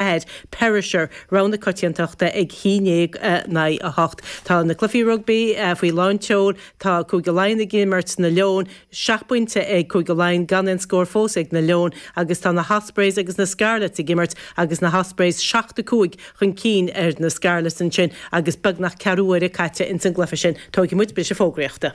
ahead, perisher, rogha na coitiantachta ag a haon déag naoi a hocht. Tá na cluifí rugbaí faoi lán seoil. Tá Cúige Laighean ag imirt na Leoin. Seacht bpointe ag Cúige Laighean gan aon scór fós ag na Leoin agus tá na hOspreys agus na Scarlets ag imirt agus na hOspreys seacht a cúig chun cinn ar na Scarlets ansin agus beagnach ceathrú uaire caite ins an gcluife sin. Tóigfaidh muid briseadh fógraíochta.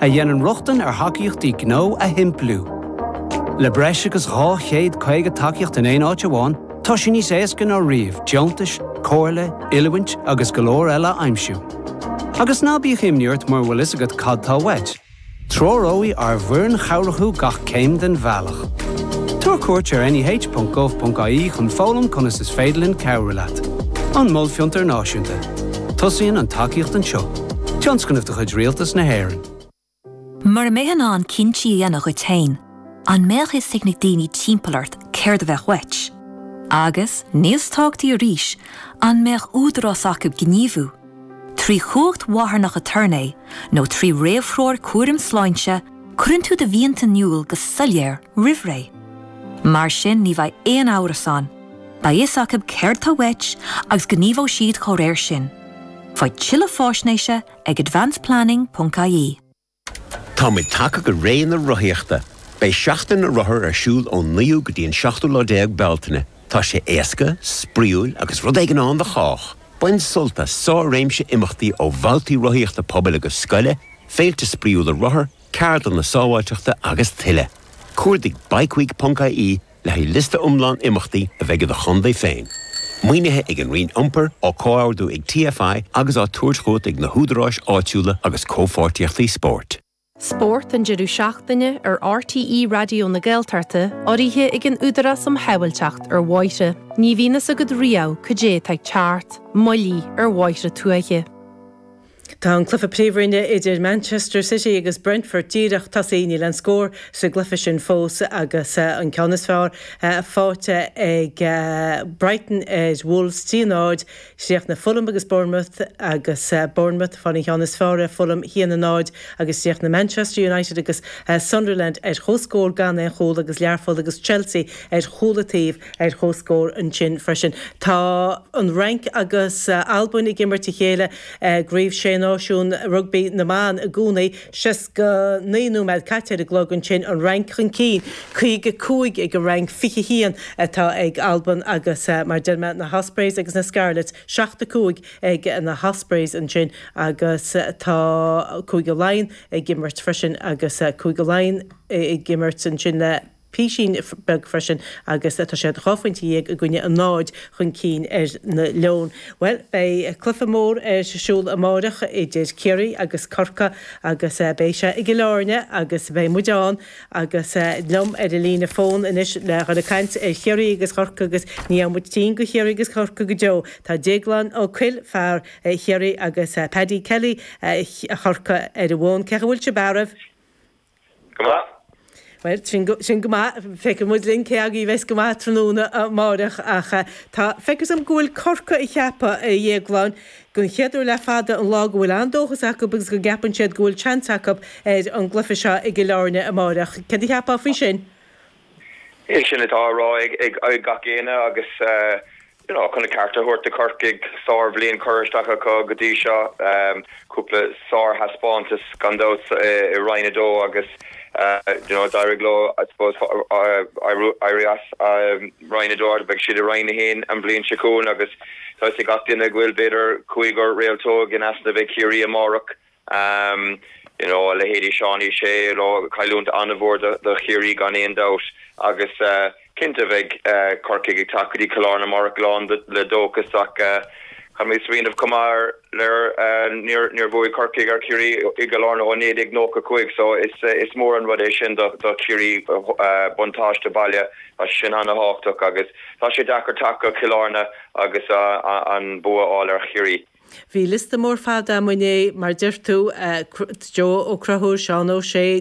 a dhéanann rochtain ar thacaíochtaí gnó a shimpliú. Le breis agus 250 tacaíocht in aon áit amháin, tá sé níos éasca ná riamh deontais, comhairle, oiliúint agus go leor eile a aimsiú. Agus ná bíodh imní ort mura bhfuil fhios agat cad tá uait, treoróidh ár bhfoireann chabhrach thú gach céim den bhealach. Tabhair cuairt ar neh.gov.ie chun foghlaim conas is féidir linn cabhrú leat. An Mol Fiontar Náisiúnta. Tosaíonn an tacaíocht anseo. Tionscnamh de chuid Rialtas na hÉireann. Mura mbeidh tú in ann cinntí a dhéanamh dhuit féin, an mbeadh fhios ag na daoine timpeall ort céard a bheadh uait? Agus, níos tábhachtaí arís, an mbeadh údarás acu gníomhú, trí chumhacht mharthanach aturnae nó trí réamhthreoir cúraim sláinte, cuireann tú do mhianta in iúl go soiléir roimh ré. Mar sin ní bheidh aon amhras ann. Beidh fhios acu céard tá uait agus gníomhóidh siad dá réir sin. Faigh tuilleadh faisnéise ag advanceplanning.ie. Táimid tagtha go ré na rothaíochta! Beidh Seachtain na Rothar ar siúl ón 9ú go dtí an 7ú déag Bealtaine. Tá sé éasca, spraíúil agus rud éigin ann do chách! Bain sult as sár-réimse imeachtaí ó bhabhtaí rothaíochta pobail agus scoile, féilte spraíúla rothar, ceardlanna sábháilteachta agus tuilleadh. Cuardaigh bikeweek.ie Le haghaidh liosta iomlán imeachtaí a bheidh i do chontae féin, maoinithe ag an Roinn Iompair, á comhordú ag TFI agus á tabhairt chugat ag na húdaráis áitiúla agus Comhpháirtíochtaí Spóirt. Spórt an deireadh seachtaine ar RTÉ Raidió na Gaeltachta, urraithe ag an Údarás um Shábháilteacht ar Bhóithre. Ní bhíonn fhios agat riamh cad é atá ag teacht. Moilligh ar bhóithre tuaithe. Tá an cluiche Príomhroinne idir Manchester City agus Brentford díreach tosaithe, níl aon scór sa gcluiche sin fós agus an ceann is fearr faighte ag Brighton ar Wolves, trí náid. Chríochnaigh Fulham agus Bournemouth agus Bournemouth ag fáil an cheann is fearr ar Fulham, haon náid, agus chríochnaigh Manchester United agus Sunderland ar chomhscór gan aon chúl agus Learpholl agus Chelsea ar chúl an taobh ar chomhscór ansin freisin. Tá an Fhrainc agus Albain ag imirt a chéile. I gCraobh Sé Náisiún Rugbaí na mBan i gcónaí, 69 nóiméad caite ar an gclog, ansin an Fhrainc chun cinn, 55 ag an Fhrainc, 21 atá ag Albain agus mar deir mé na hOspreys agus na Scarlets, 7, 5 ag na hOspreys ansin agus tá Cúige Laighean ag imirt freisin agus Cúige Laighean ag imirt ansin le. pisín beag freisin agus tá siad dhá phointe dhéag i gcoinne a náid chun cinn ar na Leoin. Bhuel, beidh cluiche mór ar siúl amáireach idir Ciarraí agus Corcaigh agus beidh sé i gCill Áirne agus beidh muid ann agus liom ar an líne fóin anois le dhul ag caint ar Chiarraí agus Corcaigh agus ní fhaigheann muid tinn de Chiarraí agus Corcaigh go deo. Tá Déaglán Ó Cuill, fear Chiarraí, agus Paddy Kelly, Chorcaí, ar an bhfón. Cén chaoi a bhfuil sibh ar maidin? Go maith. Bhuel, sin, sin go maith. Feicfidh muid linn cé agaibh a bheas go maith tráthnóna amáireach ach tá, feictear dhom go bhfuil Corcaigh ag ceapadh a Dhéagláin, den chéad uair le fada an lá go bhfuil an-dóchas acu agus go gceapann siad go bhfuil seans acu ar an gcluiche seo i gCill Áirne amáireach. Céard a cheapfá faoi sin? Sin atá á rá ag gach éinne agus you know chun a ceart a thabhairt do Chorcaigh, sárbhliain curtha isteach acu go dtí seo. Cúpla sárthaispeántas gan dabht i Roinn a dó agus you know d'éirigh leo I suppose éirí as Roinn a dó agus beidh siad i Roinn a haon an bhliain seo chugainn agus tá fhios ag gach duine go bhfuil b'fhéidir cúigear réaltóg in easnamh ag Ciarraí amárach. Ahm, you know, a leithéidí Seánie Shea, you know, cailliúnt an-mhór do, do Chiarraí gan aon dabht agus eh, cinnte beidh eh, Corcaigh ag teacht go dtí Cill Áirne amárach lán de, le dóchas ach eh, caithfimid smaoineamh chomh maith ar, ar eh, níor, níor bhuaigh Corcaigh ar Chiarraí i gCill Áirne ó 1995 so is eh, is mór an rud é sin do, do Chiarraí eh, eh, buntáiste baile, tá sé sin an-thábhachtach agus tá sé deacair teacht go Cill Áirne agus ah, ah, an bua a fháil ar Chiarraí. Bhí liosta mór fada amuigh inné, mar deir tú, Joe Ó Crothúil, Seán Ó Sé,